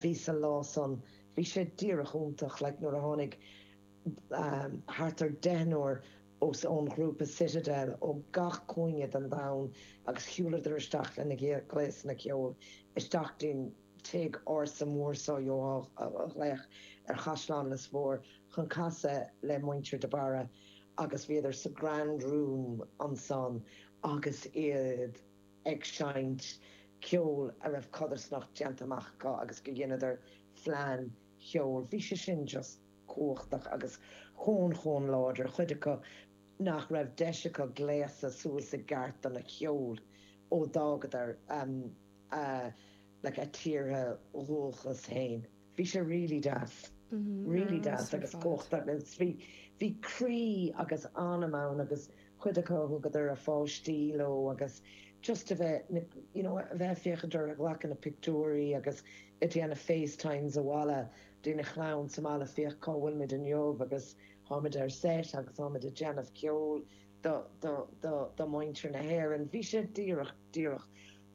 bhí sé, an lá san, bhí sé díreach iontach, like nuair a tháinig ehm, thart ar deichniúr os, ón ghrúpa Citadel ó gach cúinne den domhan agus shiúladar isteach lena ngléasanna ceoil isteach dtí'n tigh ársa mór so you know, a ghlaoch ar Chaisleán Lios Mór chun casadh le muintir de Barra agus bhíodar sa Grand Room ansan agus iad. ag seinnt ceol a raibh codarsnacht déanta amach acu agus go dheineadar phlean cheoil, bhí sé sin just cumhachtach agus chomh chomh láidir, chuid acu nach raibh deis acu gléasadh suas i gceart don cheol ó d'fhágadar a tíortha dhúchas féin. Bhí sé really deas. Really deas agus cumhachtach agus bhí, bhí croí agus anam ann agus cuid acu a thugadar a pháistí leo agus just a bheith, you know, a bheith ag féachaint orthu ag glacadh na pictiúirí agus ag déanamh FaceTimes abhaile lena chlann sa mbaile, féach cá bhfuil muid inniu agus táimid ar set agus táimid ag déanamh ceol do, do, do, do mhuintir na hÉireann. Bhí sé díreach, díreach.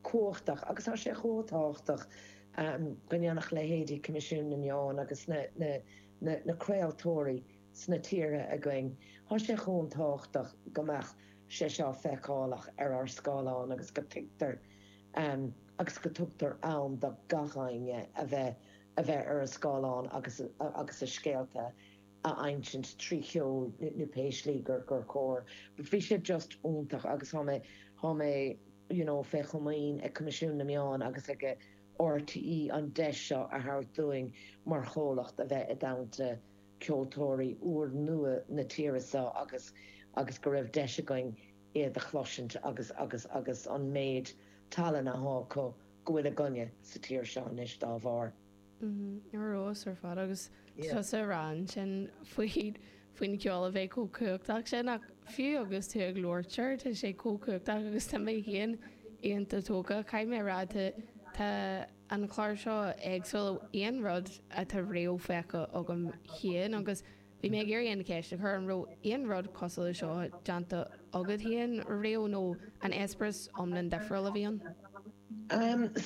cumhachtach agus tá sé chomh tábhachtach go ndéanfadh leithéidí Coimisiún na Meán agus na craoltóirí sna tíortha againn, tá sé chomh tábhachtach go mbeadh sé seo feiceálach ar ár scáileáin agus go tuigtear agus go tugtar am do gach éinne a bheith ar an scáileán agus a scéalta a insint trí cheol nó pé slí gur cóir but bhí sé just iontach agus tá mé. you know fé chomaoin ag Coimisiún na Meán agus ag RTÉ an deis seo a thabhairt dúinn mar chomhlacht a bheith i dteannta ceoltóirí úr nua na tíre seo agus agus go raibh deis againn iad a chloisint agus agus agus an méid tallainne atá acu go bhfuil againne sa tír seo anois dá bharr. Ar fheabhas ar fad agus tusa ag rá ansin faoin cheol a bheith chomh cumhachtach sin ach fiú agus tú ag labhairt air tá sé chomh cumhachtach agus tá mé féin iontach tógtha. Caithfidh mé a rá tá an clár seo éagsúil ó aon rud atá riamh feicthe agam féin agus. Bhí mé ag iarraidh an cheist a chur an raibh aon rud cosúil leis seo déanta agat féin riamh nó an eispéireas iomlán difriúil a bhí ann?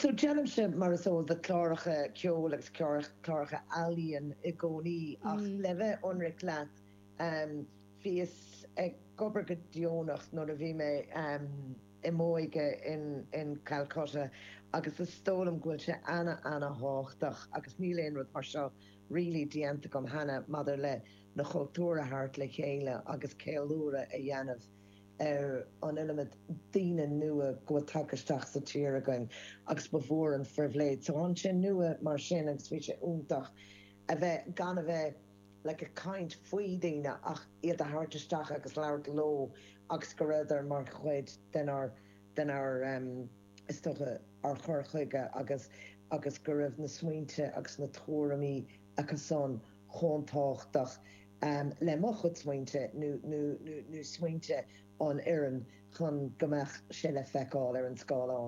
So, déanaimse, mar is eol duit, cláracha ceoil agus cláracha ealaíon i gcónaí ach le bheith ionraic leat, bhíos ag obair go deonach nuair a bhí mé i m'óige in Calcutta agus is dóigh liom go bhfuil sé ana-ana-thábhachtach agus níl aon rud mar seo really déanta agam cheana maidir leis na cultúir a thabhairt le chéile agus ceiliúradh a dhéanamh ar an iliomad daoine nua go bhfuil tagtha isteach sa tír againn agus ba mhór an phribhléid. So bhí sé nua mar sin agus bhí sé iontach a bheith, gan a bheith like ag caint faoi daoine ach iad a thabhairt isteach agus labhairt leo agus go rabhadar mar chuid dár, dár. is dócha, ár gcur chuige agus agus go raibh na smaointe agus na tuairimí acusan chomh tábhachtach le mo chuid smaointe nó nó nó smaointe an fhoireann chun go mbeadh sé le feiceáil ar an scáileán.